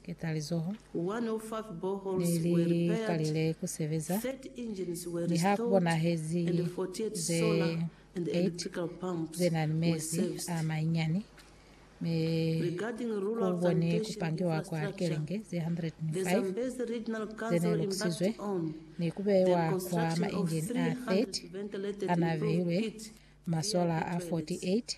ketalizoho ne li kalile ku sebeza, mi ha ku bonahezi ze 8 ze na ni mezi a manyinyani, mi ku boni ku pangiwa kwa likelenge ze 105 ze ne lukusizwe, ni ku beiwa kwa mainjini a 30 a na beilwe masola a 48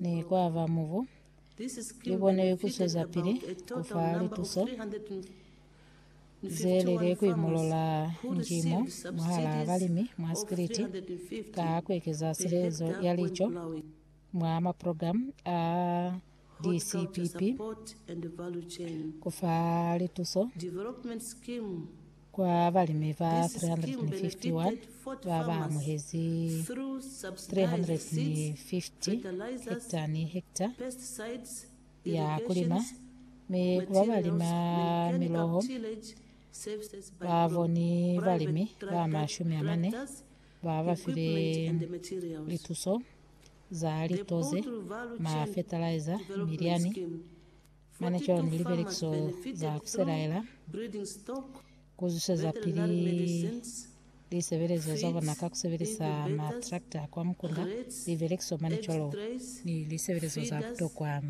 ne kwa ba mubu, lu kone ku swezapili ku fa lituso ze lile ku imolola njimo mwahalaa balimi mwa sikiliti ka ku ekeza silezo ya lico mwa maprogramu a DCPP, ku fa lituso Kwa balimi ba 351 ba ba amuhezi 350 hekta ni hekta ya ku lima, mi ku ba ba lima miloho ba boni balimi ba mashumi a mane ba ba file lituso za lito ze ma fetalaiza, milyani, Mane cwalo ni lipelekiso za ku selaela, ku zuseza pili lisebelezo za bona ka ku sebelisa matrakta a kwa mukunda, lipelekiso mane cwalo ni lisebelezo za butokwa.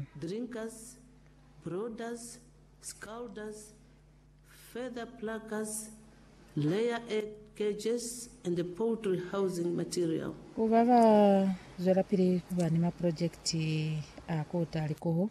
Ku ba ba zwelapili ku ba ni maprojekiti a ku uta likuhu,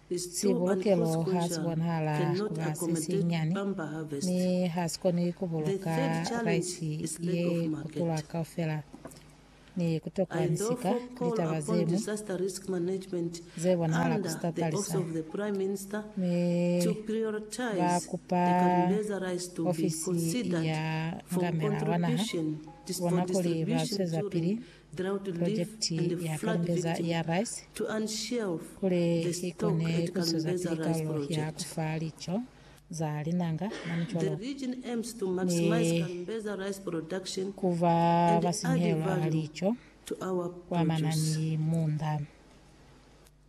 Sibulukelo ha si bonahala ku ba se sinyani, mi ha si koni ku buluka raisi ye kutula kaufela. Ni kutokwa ni sika litaba ze ñwi ze bonahala ku si tatalisa, mi ba kupa ofisi ya Ngamela wa Naha bona kuli ba zwezapili Purojekiti ya Kalumbeza ya Rice kuli i kone ku zwezapili kalo ya ku fa lico za linanga mwa micwalo ni ku ba basinyehelo ba lico kwa manani munda.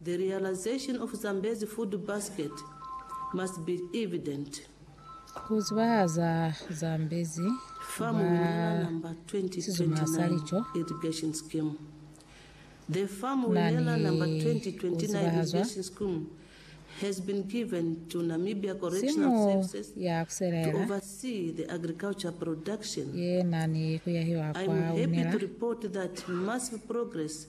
The realization of Zambezi food basket must be evident. Ku zibahaza Zambezi fa Farm Winela Number sizuma sa 2029 lico Irrigation Scheme The Farm na ni Winela Number ku 2029 zibahazwa Irrigation Scheme has been given to Namibia simu Correctional Services ya ku to selela oversee the agriculture production. ye na ni ku yahiwa I kwa am happy Winela. to report that massive progress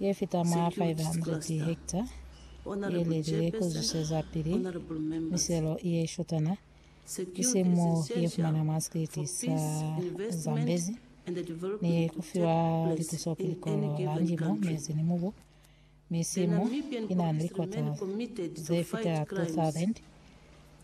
ye fita mwa 500 hekta ye lelile ku zwisezapili miselo ye shotana, isiñi mo ye fumanwa mwa sikiti sa Zambezi, ni ku fiwa lituso ku likolo la ndimo, mezi ni mubu. Mi simu i na ni likota ze fita 2,000.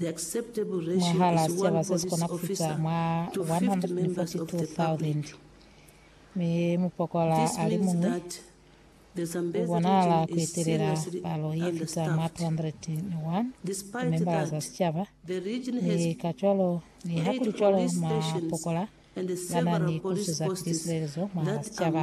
mwahal'a sicaba se si kona ku fita mwa 142,000, mi mupokola a li muñwi u bonahala ku etelela palo ye fita mwa 201 ya membala za sicaba, mi kacwalo niha ku li cwalo mwapokola ba na ni ku suza pili silelezo mwahal'a sicaba.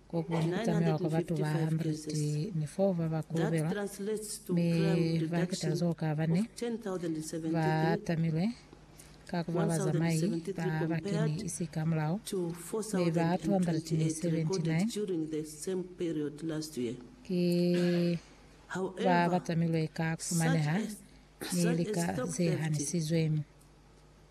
Kokuba ni ku tamiwa kwa batu ba 104 ba ba kolobelwa, mi ba keta zo ka bane ba tamilwe ka ku ba bazamai ba ba keni isi ka mulao, mi ba 279 ki ba ba tamilwe ka ku fumaneha ni lika ze hanisizwe.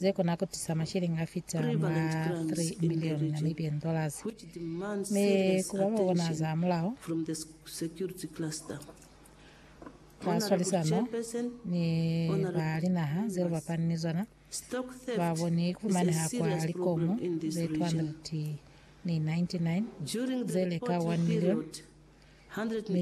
ze kona ku tisa masheleñi a fita mwa 3 milioni Namibian dollars. Mi ku ba ba bona za mulaho, ka swalisano ni ba linaha ze lu bapani ni zona, ba boni ku fumaneha kwa likomu ze 299 ze li ka 1 milioni, mi